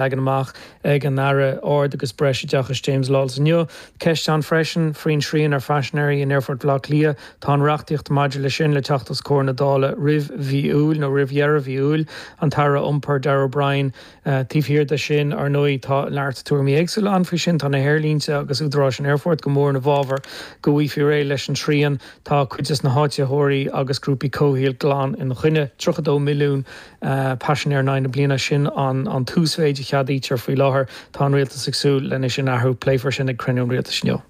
leagan amach ag an Aire Ard agus Breisoideachais James Lawless inniu. Ceist ann freisin faoin tsrian ar phaisinéirí in Aerfort Bhleá Cliath. Tá an reachtaíocht maidir leis sin le teacht os comhair na Dála roimh mhí Iúil nó roimh dheireadh mhí Iúil. An tAire Iompair, Darragh O'Brien. Taobh thiar de sin, ar ndóigh, tá neart tuairimí éagsúla ann faoi sin. Tá na haerlínte agus údaráis an aerfoirt go mór i bhfabhar go bhfaighfí réidh leis an srian. Tá cuid de na háitritheoirí agus grúpaí comhshaoil glan ina choinne. Tríocha dó milliún. Paisinéir in aghaidh na bliana, sin an t-uasmhéid a cheadaítear faoi láthair. Tá an Rialtas ag súil leis sin a athrú. Pléifear sin ag cruinniú an Rialtais inniu.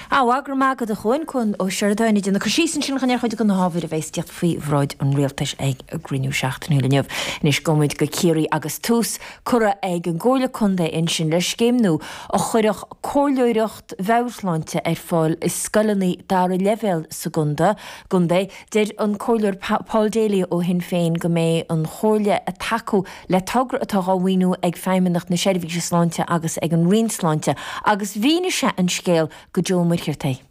Go raibh maith agat a Chuáin, Cuán Ó Seireadáin ag déanamh cur síos ansin ar chuid de na hábhair a bheas faoi bhráid an Rialtais ag a gcruinniú seachtainiúil inniu. Anois gabhann muid go Ciarraí agus tús curtha ag an gComhairle Contae ansin le scéim nua a chuirfeadh comhairleoireacht mheabhairshláinte ar fáil i scoileanna dara leibhéal sa gcontae. Deir an Comhairleoir Paul Daly ó Shinn Féin go mbeidh an Chomhairle ag tacú le togra atá dhá mhaoiniú ag Feidhmeannacht na Seirbhíse Sláinte agus ag an Roinn Sláinte agus mhínigh sé an scéal do Joe Ó Muircheartaigh.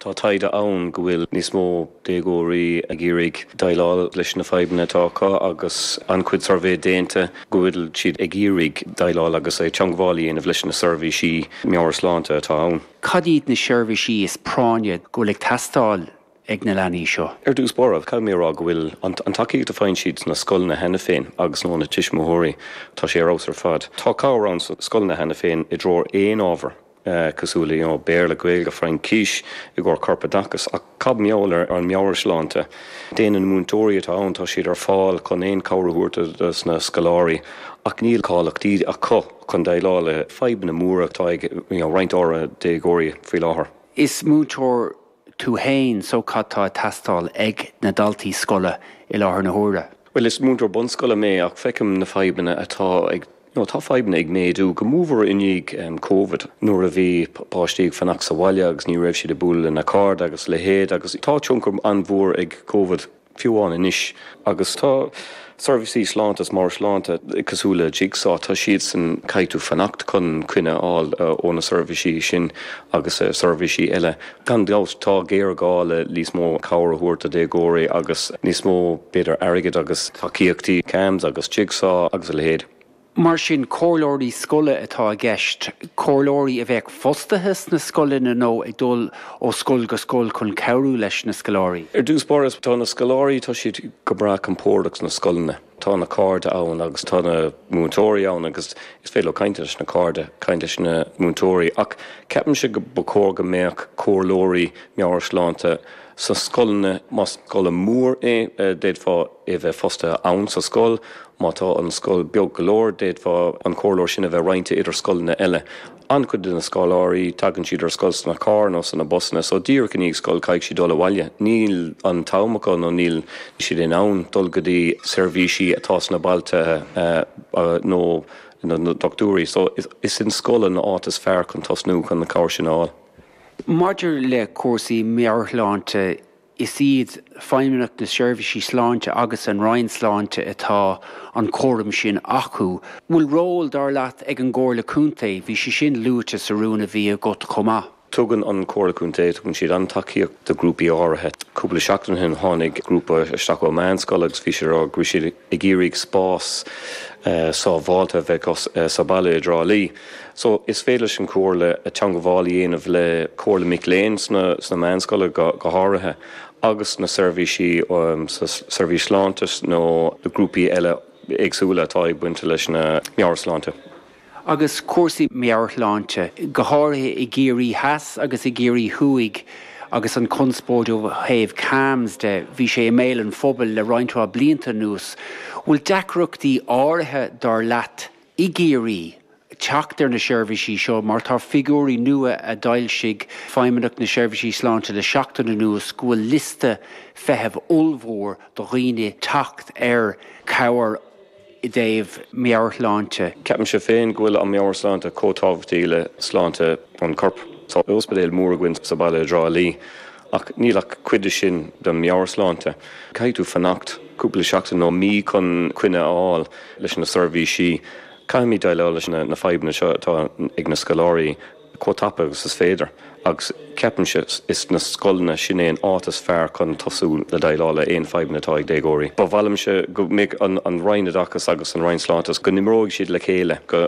Tá taighde ann go bhfuil níos mó déagóirí ag iarraidh déileáil leis na fadhbanna atá acu agus an-chuid suirbhé déanta go bhfuil siad ag iarraidh déileáil agus teangmháil a dhéanamh leis na seirbhísí meabhairshláinte atá ann. Cad iad na seirbhísí is práinne go bhfuil ag teastáil ag na leanaí seo. Ar dtús báire, caithfidh mé a rá go bhfuil an tacaíocht a faigheann siad sna scoileanna cheana féin agus óna tuismitheoirí, tá sé ar fheabhas ar fad. Tá cabhair ann sna scoileanna cheana féin i dtreo aon ábhar cosúil le Béarla, Gaeilge, Fraincís i gcomhair corpoideachais, ach cad mar gheall ar an meabhairshláinte? Déanann na múinteoirí atá ann, tá siad ar fáil chun aon cabhair a thabhairt do na scoláirí ach níl cáilíocht acu chun déileáil le fadhbanna móra atá ag roinnt déagóirí faoi láthair. Is múinteoir tú fhéin, so cad tá ag teastáil ag na daltaí scoile i láthair na huaire? Bhuel is múinteoir bunscoile mé ach feicim na fadhbanna atá ag, nó tá fadhbanna ag méadú go mór i ndiaidh Covid nuair a bhí páistí ag fanacht sa bhaile agus ní raibh siad ag bualadh lena cairde agus a leithéid agus tá tionchar an-mhór ag Covid Fiú amháin anois agus tá seirbhísí sláinte agus meabhairshláinte cosúil le Jigsaw, tá siadsan ag caitheamh fanacht chun coinne a fháil ó na seirbhísí sin agus seirbhísí eile. Gan dabht tá géarghá le níos mó cabhair a thabhairt do déagóirí agus níos mó b'fhéidir airgid agus tacaíochtaí, CAMHS agus Jigsaw agus a leithéid. Mar sin, comhairleoirí scoile atá i gceist, comhairleoirí a bheadh fostaithe sna scoileanna nó ag dul ó scoil go scoil chun cabhrú leis na scoláirí. Ar dtús báire, tá na scoláirí, tá siad go breá compordach sna scoileanna. Tá na cairde ann agus tá na múinteoirí ann agus is féidir leo caint leis na cairde, caint leis na múinteoirí. Ach ceapaimse go ba chóir go mbeadh comhairleoirí meabhairshláinte, sa scoileanna. Más scoil mhór é d'fhéadfadh é bheith fostaithe ann sa scoil. Má tá an scoil beag go leor d'fhéadfadh an comhairleoir sin a bheith roinnte idir scoileanna eile. An-chuid de na scoláirí tagann siad ar scoil sna cairr nó sna busanna so díreach i ndiaidh scoil caithfidh siad dul abhaile. Níl an t-am acu nó níl siad in ann dul go dtí seirbhísí atá sna bailte nó na doctúirí so is í an scoil an áit is fearr chun tosnú chun an cabhair sin a fháil. Maidir le cúrsaí meabhairshláinte, is iad Feidhmeannacht na Seirbhísí Sláinte agus an Roinn Sláinte atá an cúram sin acu. Bhfuil ról, dar leat, ag an gComhairle Contae? Bhí sé sin luaite sa rún a bhí agat chomh maith. Tugann an Comhairle Contae, tugann siad an-tacaíocht do ghrúpaí áirithe. Cúpla seachtain ó shin tháinig grúpa isteach ó mheánscoil agus bhí siad ag rá go raibh siad ag iarraidh spás sábháilte a bheith acu sa bhaile i dTrá Lí. So, is féidir leis an Chomhairle teangmháil a dhéanamh le Comhairle Mic Léinn sna meánscoileanna go háirithe agus na seirbhísí sa seirbhís sláinte nó na grúpaí eile éagsúla atá ag baint leis na meabhairshláinte. Agus cúrsaí meabhairshláinte, go háirithe i gCiarraí Theas agus i gCiarraí Thuaidh agus an conspóid ó thaobh CAMHS de, bhí sé i mbéal an phobail le roinnt mhaith blianta anuas, bhfuil deacrachtaí áirithe dar leat i gCiarraí, teacht ar na seirbhísí seo mar tá figiúirí nua a d'fhoilsigh Feidhmeannacht na Seirbhísí Sláinte le seachtain anuas go bhfuil liosta feithimh ollmhór do dhaoine teacht ar chabhair i dtaobh meabhairshláinte. Ceapaimse féin go bhfuil an meabhairshláinte chomh tábhachtach le sláinte an choirp. Tá ospidéal mór againn sa bhaile i dTrá Lí Ach níl ach cuid de sin de mheabhairshláinte. Caithfidh tú fanacht cúpla seachtain nó mí chun coinne a fháil leis na seirbhísí. Caithfimid déileáil leis na fadhbanna seo atá ag na scoláirí chomh tapa agus is féidir agus ceapaimse is na scoileanna sin é an áit is fearr chun tosú le déileáil le aon fadhbanna atá ag déagóirí. Ba mhaith liomse go mbeidh an Roinn Oideachais agus an Roinn Sláinte go n-imreoidh siad le chéile go